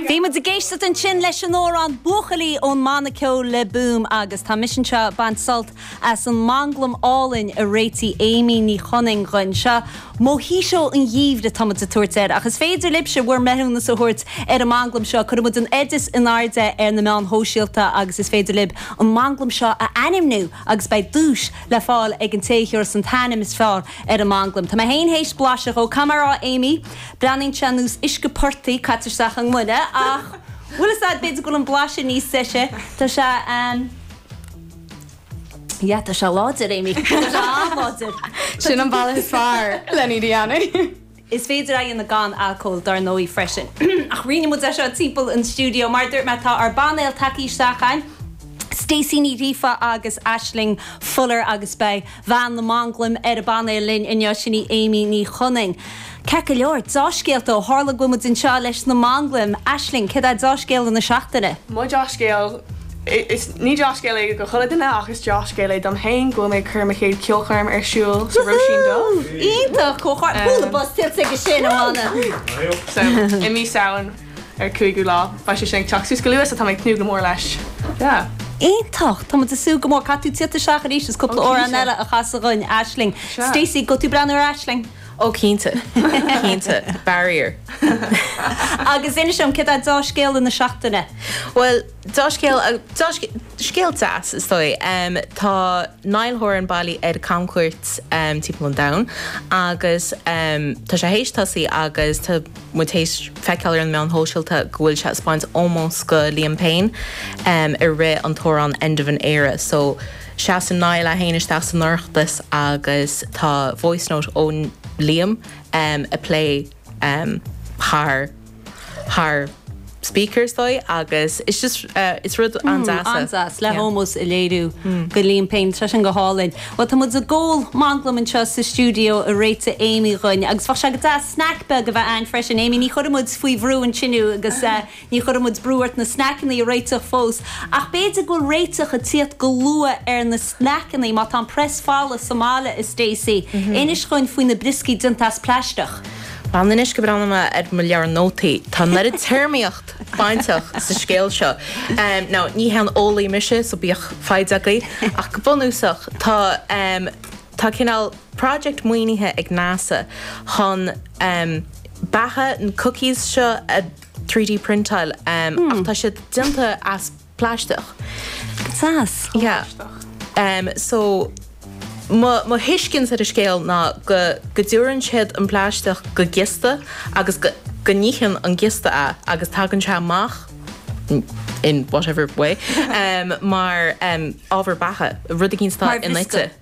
Bhí muid ag éisteacht ansin leis an amhrán 'Buachaillí' ón mbanna ceoil Le Boom agus tá mise anseo ag baint sult as an manglam álainn a réitigh Amy Ní Chonaing dhuinn. Seo Mojito an Gheimhridh atá muid ag tabhairt air ach is féidir libhse bhur mbreithiúnas a thabhairt ar an manglam seo. Cuirfidh muid an t-oideas in airde ar na meáin shóisialta agus is féidir libh an manglam seo a ainmniú agus beidh duais le fáil ag an té a thiúras an t-ainm is fearr ar an manglam. Tá mé féin théis blaiseadh dhó. Cén bharúil Amy? Breathnaíonn sé ar nós uisce portaigh caite isteach i ngloine ach bhuel, is ait, b'fhéidir go bhfuil an blas níos deise. Tá sé ehm. yeah, tá sé láidir, Amy. Tá sé an-láidir. Sin an bealach is fearr len iad a dhéanamh. Is féidir é a dhéanamh gan alcól dar ndóigh freisin. Ach roinnfidh muid é seo timpeall an stiúideo. Mar a dúirt mé, tá ár bpainéal tagthaí isteach againn, Stacey Ní Ghríofa agus Aisling Fuller agus beidh. bhean na manglaim ar an bpainéal linn inniu, sin í Amy Ní Chonaing. Ceart go leor, deá-scéalta ó tharla go bhfuil muid anseo leis na manglaim. Aisling, céard é do dheá-scéala na seachtaine? Mo dheá-scéal, is ní deá-scéal é go chuile dhuine ach is deá-scéal é dom féin, go bhfuil mé ag cur mo chéad ceolchoirm ar siúl sa Róisín Dubh. Wúhú! Iontach! Comhghairdeas! Chuala buzz tuillte aige sin, a Mhána. So, i mí Samhain. an cúigiú lá. Beidh sé sin ag teacht suas go luath so tá mé ag tnúth go mór leis. Yeah. Iontach! Tá muid ag súil go mór. Caithfidh tú tiacht isteach arís is cúpla amhrán eile a chasadh dhuinn, Aisling. Stacey, ngabhfaidh tú ag breathnú ar Aisling? Ó cinnte. Cinnte. Barrier. Agus inis liom, céard é deá-scéala na seachtaine? Bhuel. Deá-scéal, scéal deas is dóigh. Tá Niall Horan bailithe ar camchuairt timpeall an domhain agus tá sé théis tosaí agus tá muid théis feiceáil ar na meáin shóisialta go bhfuil sé ag spáint ómós go Liam Payne i rith an t-amhrán End of an Era. So seasann Niall é féin isteach san audience agus tá voice note ó Liam ag plé. thar thar speakers dóibh agus it's just it's rud an-deas. An-deas le hómós a léiriú go Liam Payne Tá sé sin go hálainn. Bhuel tá muid ag ól manglaim anseo sa stiúideo a réitigh Amy dhuinn agus bheadh sé go deas snaic beag a bheith ann freisin. Amy, ní chuirfidh muid faoi bhrú thú inniu agus Ní chuirfidh muid brú ort na snaiceanna a réiteach fós, ach b'fhéidir go bhfuil réiteach ag tíocht go luath ar na snaiceanna má tá an press folamh sa mbaile, a Stacey. Inis dhuinn faoi na brioscaí déanta as plaisteach. Fan anois go mbreathnóidh mé ar mo leabhar nótaí. Tá an oiread téarmaíocht bainteach leis an scéal seo. Now, ní haon eolaí mise, so bíodh foighid agaibh, ach go bunúsach, tá, em, tá cineál project maoinithe ag NASA chun, em, beatha, na cookies seo a, 3D printáilte ach tá siad déanta as plaisteach. Saghas. Yeah. So mo thuiscint ar an scéal ná go dtabharann siad an plaisteach do ghiosta agus go n-itheann an giosta é agus tagann sé amach in whatever way mar ábhar beatha, rud éigin atá inite.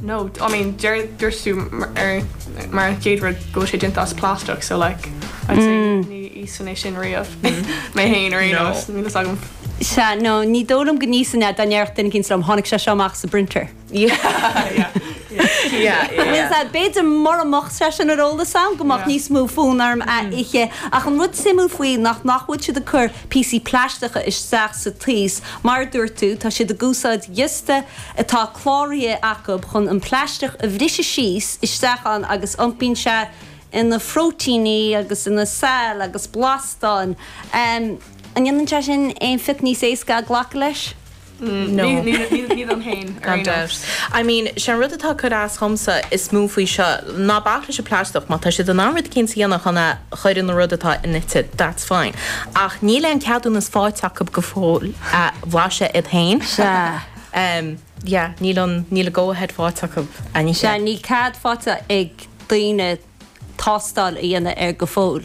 No, I mean, deir, dúirt tú ar, mar an chéad rud, go bhfuil sé déanta as plastach, so like, I'd say ní íosfainn é sin riamh, mé féin ar aon nós, níl a fhios agam. Sea, no, ní dóigh liom go n-íosfainn é, dá ndéarfadh duine éigin liom, tháinig sé seo amach sa bprinter. Bhuel, sea, b'fhéidir mura mbeadh sé sin ar eolas agam, go mbeadh níos mó fonn orm é a ithe. Ach an rud suimiúil faoi nach, nach bhfuil siad ag cur píosaí plaisteacha isteach sa taos, mar a dúirt tú, tá siad ag úsáid giosta, atá cláraithe acu chun an plaisteach a bhriseadh síos isteach ann agus iompaíonn sé ina phróitéiní agus ina saill agus blastáin. An ndéanann sé sin aon phioc níos éasca glacadh leis? No. Ní dom féin, ar aon nós. I mean, sé an rud atá ag cur as dhomsa is mó faoi seo, ná bac leis an plaisteach, má tá siad in ann rud éicínt a dhéanamh chun é a chur ina rud atá inite, that's fine, ach níl aon cheadúnas fáighte acu go fóill é a bhlaiseadh iad féin. Sea. yeah níl an níl an go ahead fáighte acu anois. yeah níl cead fáighte ag daoine tástáil a dhéanamh air go fóill.